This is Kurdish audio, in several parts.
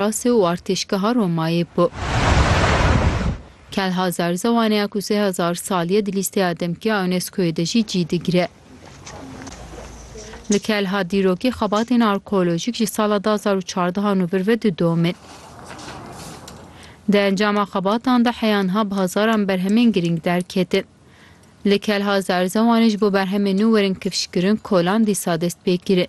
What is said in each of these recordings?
Rase û artêşgeha Romayê bû. Kelha zerzewaneya ku sê hezar sal ye di lîsteya demkî ya UNESCO'yê de jî cî digire. Li Kelha dîrokî xebatên arkeolojîk ji sala du hezar û çardeh an û vir ve didomin. Di encama xebatan de heyanha bi hezaran berhemên girîng derketin. Li Kelha zerzewanê ji bo berhemên nû werin kifşkirin, kolan dîsa dest pê kirin.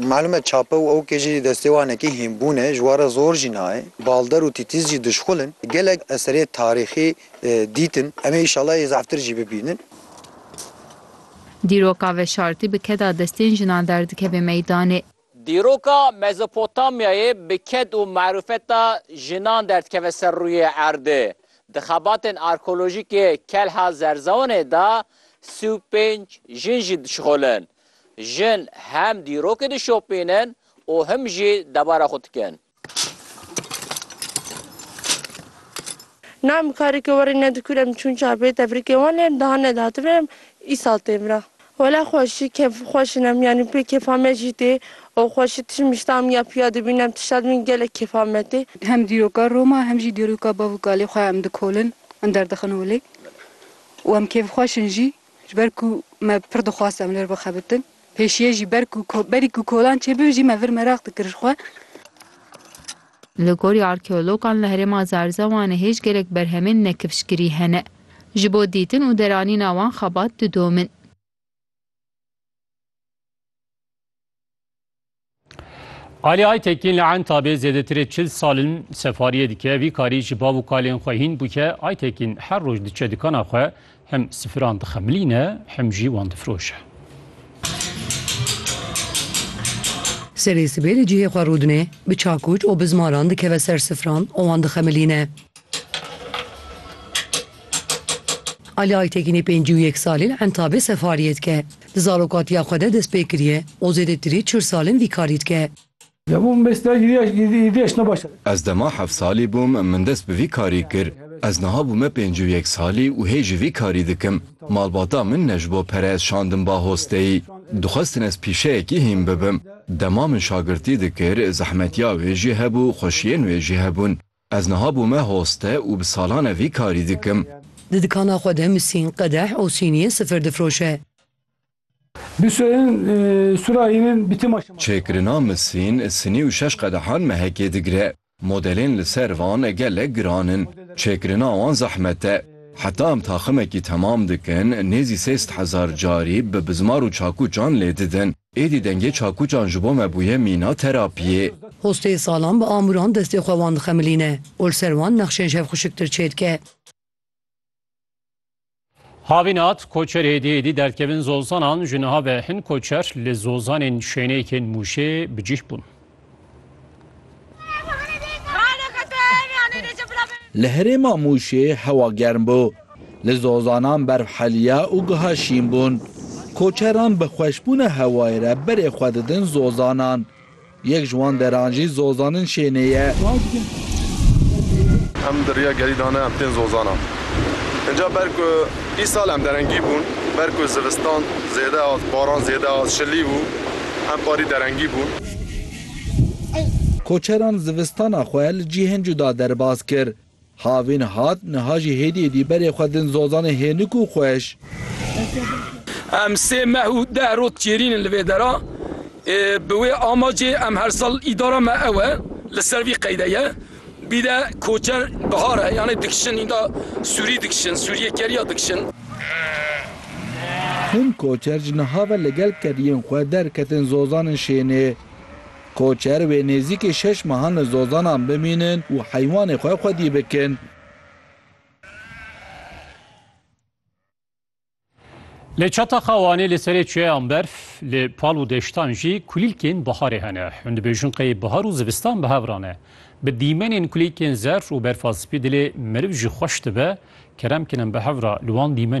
Malum e çape û ewkê jî destê wan e kî hînbûn e, ji wan re zor jî nayê. Balder û tîtiz jî dişxul in. Gelek eserê tarîxî dîtin. Em ê îşallah yê zeftir jî bibînin. Dîroka veşartî bi keda destên jinan derdikeve meydanê. Dîroka Mezopotamyayê bi ked û marûfeta jinan derdikeve ser rûyê erdê. Di xebatên arkeolojîkê Kelha Zerzewanê de sî û pênc jin jî dişixulin. Jin hem dîrokê dişopînin û him jî debara xwe dikin. Na em kareke werî ne dikûr em çûn çarpêyê tefrîkê wan lê em daha nedatibin em îsal tê vira. Wela xweşî kêf xweş in em yanî pê kêfa me jî tê û xweşî tişt mişta em ya piya dibîn em tişta dibîn gelek kêfa me tê. Hem dîroka Roma hem jî dîroka bav û kalê xwe em dikolin em derdixin holê û em kêfxweş in jî Ji ber ku me pir dixwast em li vir bixebitin. Pêşiyê jî ber ku berî ku kolan çêbibe jî me vir meraq dikir ji xwe. Li gorî arkeologan li herêma Zarzewanê hêj gelek berhemên nekifşkirî hene. Ji bo dîtin û deranîna wan xebat didomin. Alî Aytekîn li Entabê zêdetirê çil sal in sefariyê dike, vî karî ji bav û kalên xwe hîn bûke. Aytekîn her roj diçe dikana xwe, hem sifiran dixemilîne, hem jî wan difiroşe. Serê sibê li cihê xwe rûdine, bi çakûç û bi zmaran dikeve ser sifiran û wan dixemilîne. Alî Aytekînê pêncî û yek salî li Entabê sefariyê dike. Di zarokatiya xwe de dest pê kiriye û zêdetirî çil sal in vî karî dike. Ez dema heft salî bûm min dest bi vî karî kir. Ez niha bûme pêncî û yek salî û hê jî vî karî dikim. Malbata min ne ji bo pere ez şandim ba hosteyî. Dixwestin ez pîşeyekî hîn bibim. Dema min şagirtî dikir, zehmetiya wê jî hebû, xweşiyên wê jî hebûn. Ez niha bûme hoste û bi salan e vî karî dikim. Di dikana xwe de misîn, qedeh û sîniyên sifir difroşe. Bîsoyên Surahînên bîtî ma şema. Çêkirina misîn, sinî û şeş qedehan mehekê digire. Modelên li ser van gelek giran in. Çêkirina wan zehmet e. Heta em taximekî temam dikin, nêzî sê sed hezar carî bi bizmar û çakûçan lê didin. Êdî dengê çakûçan ji bo me bûye mîna terapiyê. Hostê salan bi amûran destê xwe wan dixemilîne û li ser wan nexşên şevxuşiktir çêdike. Havînat, Koçer êdî êdî derkevin zozanan, ji niha ve hin koçer li zozanên şêneyekên Mûşê bi cih bûn. Li herêma Mûşê hewa germ bû. Li Zozanan berf heliya û giha şîn bûn. Koçeran bi xweşbûna hewayê re berê xwe didin Zozanan. Yek ji wan deran jî Zozanin şênê ye. Em di riya gerî dane em tên Zozanan. Inca ber ku îsal em derengî bûn, ber ku zivistan zêde hat, baran zêde hat, şilî bû, em parî derengî bûn. Koçeran zivistana xwe li cihên cuda derbas kir. Havîn hat, niha jî hêdî hêdî berê xwe din zozanê hênik û xweş. Em sê meh û deh rot çêrîn in li vê dera. Bi wê amacê em her sal îdara me ew e, li ser vî qeyde ye. Bîle koçer bihar e yanê dikişin înda sûrî dikişin sûrîyê kerîya dikişin. Hin koçer ji niha ve li gel kerîyên xwe derketin zozanên şênê. Koçer wê nêzîkê şeş mehan li zozanan bimînin û heywanê xwe xwedî bikin. Lê çata xewanê li serê çiyeyan berf, li pal û deştan jî kulîlkên biharê hene. Hûn dibêjin qey bihar û zivistan bi hev re ne. Bi dîmenên kulîlkên zer û berfa spî dilê meriv jî xweş dibe, kerem kirin bi hev re li wan dîmenên.